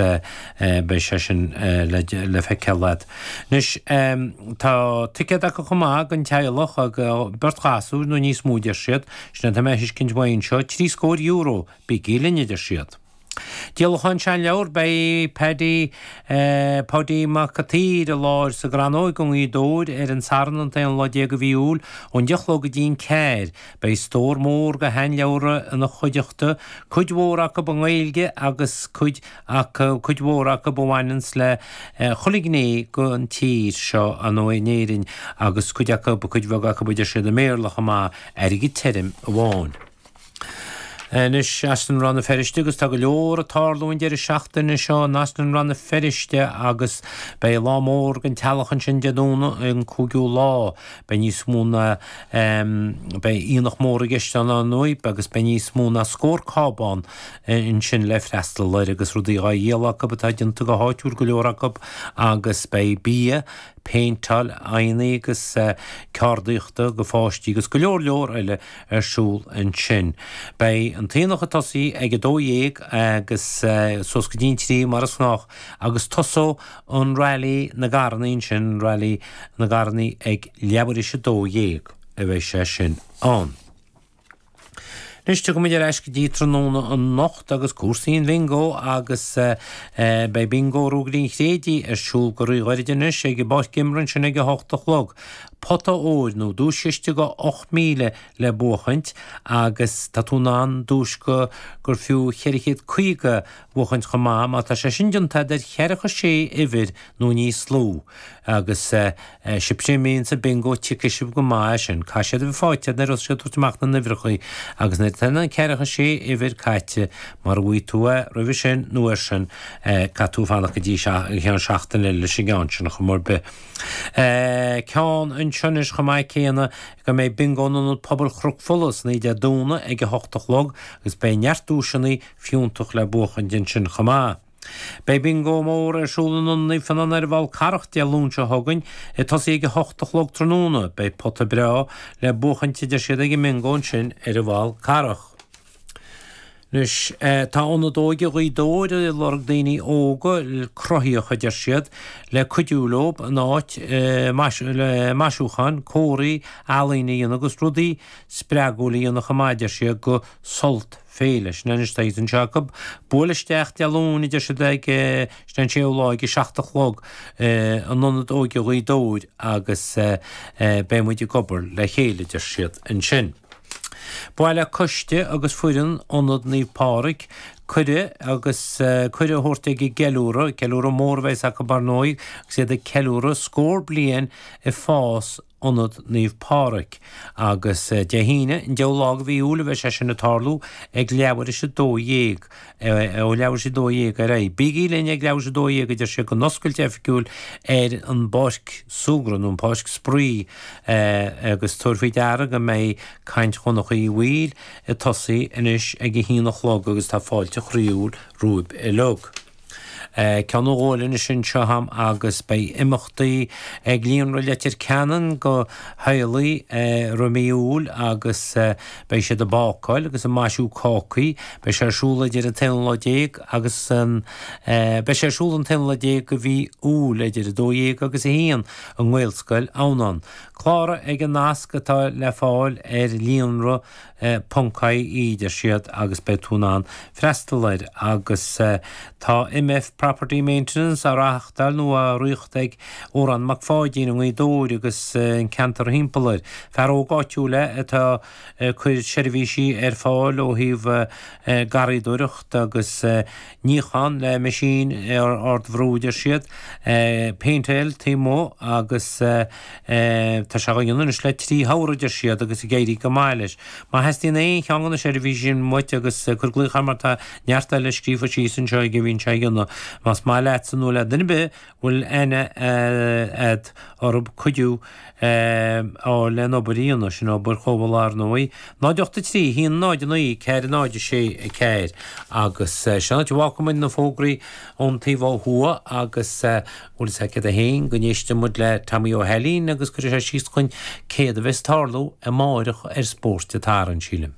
beidh sé sin le feiceáil agat. Anois, tá ticéad acu chomh maith don teaghlach, beirt ghasúr nó níos mó deir siad, sin atá mé a thuiscint uaidh seo, trí scór euro, bígí linn a deir siad. Díolachán seanleabhar, beidh Paddy, Paudie Mac Cataoir i láthair sa gCrannóg i nGaoth Dobhair ar an Satharn an t-aon lá déag de mhí Iúil, ón deich a chlog go dtí an ceathair. Beidh stór mór de shean-leabhra ina chuideachta, cuid mhór acu i nGaeilge agus cuid acu, cuid mhór acu a bhaineanns le chuile ghné den tír seo, an nó in Éirinn, agus cuid acu, cuid bheag acu, a deir siad i mBéarla chomh maith, airgead tirim amháin. Anois as an Rann na Feirste agus tá go leor ag tarlú an deireadh seachtaine seo as an Rann na Feirste agus beidh lá mór don teaghlach ansin Dé Domhnaigh an 5ú lá. Beidh níos mó ná Beidh aonach mór i gceist ann, ar ndóigh, agus beidh níos mó ná scór cábán ansin le freastal air agus rudaí á dhíol acu atá déanta go háitiúil go leor acu agus beidh bia, péinteáil aghaidheanna agus ceardaíocht do pháistí agus go leor leor eile ar siúl ansin. Beidh an t-aonach ag tosaí ag a dó dhéag agus suas go dtí an trí mar is gnách agus tosóidh an Railí na gCarrannaí ansin, Railí na gCarrannaí ag leathuair tar éis a dó dhéag a bheidh sé sin ann. Anois tiocfaimid ar ais go dtí tráthnóna anocht agus cúrsaí an Bhingo agus beidh Bingo Ruagairí an Chraoibhín ar siúl go ríghoiride anois ag an bPáirc Imeartha ansin ag a hocht a chlog. Pota óir nó duais-chiste de ocht míle le buachaint agus tá tú in ann duais go gur fiú cheithre chéad caoga bhuachaint chomh maith má tá sé sin déanta agat ar cheathracha sé uimhir nó níos lú, agus sibhse a bhíonns ag an mbingo tuigfidh sibh go maith é sin. Caithfidh siad a bheith fáighte nuair atá siad ag tabhairt amach na n-uimhreachaí agus nuair atá na ceathracha sé uimhir caithte, mara bhfaighidh tú é roimhe sin nó air sin, caithfidh tú fanacht go ceann seachtaine eile leis an gceann sin ar chaoi ar bith. Ceann anseo anois chomh maith céanna go mbeidh bingo in Ionad Pobail Chnoc Fola ansin Dé Domhnaigh ag a hocht a chlog agus beidh neart duaiseanna, fiúntacha le buachaint ansin chomh maith. Beidh Bingo mór ar siúl i Halla Naomh Fionán ar an bhFál Carrach Dé Luain seo chugainn, ag tosaí ag a hocht a chlog tráthnóna. Beidh pota breá le buachaint a deir siad ag an mBingo ansin ar an bhFál Carrach. Anois, tá Ionad Óige Ghaoth Dobhair ag lorg daoine óga cruthaíocha a deir siad, le cuidiú leo in áit maisiúcháin, comharthaí, ealaín a dhéanamh agus rudaí spreagúla a dhéanamh chomh maith a deir siad do Sult. Féile, Sin é anois tá sé anseo acu, buail isteach Dé Luain a deir siad agus sin an séú lá ag a seacht a chlog in Ionad Óige Ghaoth Dobhair agus beidh muid ag obair le chéile a deir siad ansin. Ba mhaith le coiste agus foireann Ionad Naomh Pádraig cuireadh agus cuireadh a thabhairt ag an gceiliúradh, ceiliúradh mór a bheas acu ar ndóigh agus iad ag ceiliúradh scór bliain ag fás Ionad Naomh Pádraig, agus Dé hAoine, an deichiú lá de mhí Iúil a bheidh sé sin ag tarlú, ag leathuair tar éis 12, ó leathuair tar éis 12 ar aghaidh. Bígí linn ag leathuair tar éis 12, a deir sé don oscailt oifigiúil ar an bpáirc súgradh, nó an páirc spraoi, agus tabhair faoi deara go mbeidh caint Dhonncha Uí Bhaoill ag tosaí anois ag a haon a chlog agus tá fáilte chroíúil romhaibh uilig. Ceann nó dhó eile anois anseo agam agus beidh imeachtaí ag Líonra Leitir Ceanainn do theaghlaigh roimh mhí Iúil agus beidh siad ag bácáil agus ag maisiú cácaí. Beidh sé ar siúl idir an t-aonú lá déag agus an Beidh sé ar siúl an t-aonú lá déag de mhí Iúil idir 12 agus 1 i nGaelscoil Adhamhnáin. Cláraigh ag an nasc atá le fáil ar Líonra e, ponc ie, a deir siad, agus beidh tú in ann freastal air agus tá OMF Property Maintenance á reáchtáil nó á ritheacht ag Odhrán Mac Pháidín i nGaoth Dobhair agus an ceantar thimpeall air. Fear óg áitiúil é atá ag cuir seirbhísí ar fáil ó thaobh garraíodóireacht agus 'Níochán le meaisín ardbhrú' a deir siad, 'péinteáil taobh amuigh' agus 'tá sé á dhéanamh anois le trí shamhradh' a deir siad agus ag éirí go maith leis. Má theastaíonn aon cheann de na seirbhísí sin uait agus cuir glaoch air mar tá neart eile scríofa síos anseo go mbíonn sé á dhéanamh más maith leatsa nó le duine ar bith bhfuil aithne a'd orthu cuidiú a fháil leis an obair a dhéanas sé sin, obair chothabhála ar ndóigh. 0 83 1 0 9 4 0 6 4 agus sin é, fágfaidh muid na fógraí ón taobh ó thuaidh agus bhfuil a fhios agat fhéin go n-éistfidh muid le Tommy Ó hAilín agus cuirfidh sé síos dúinn céard a bheas ag tarlú amáireach ar Spórt an tSathairn, sílim.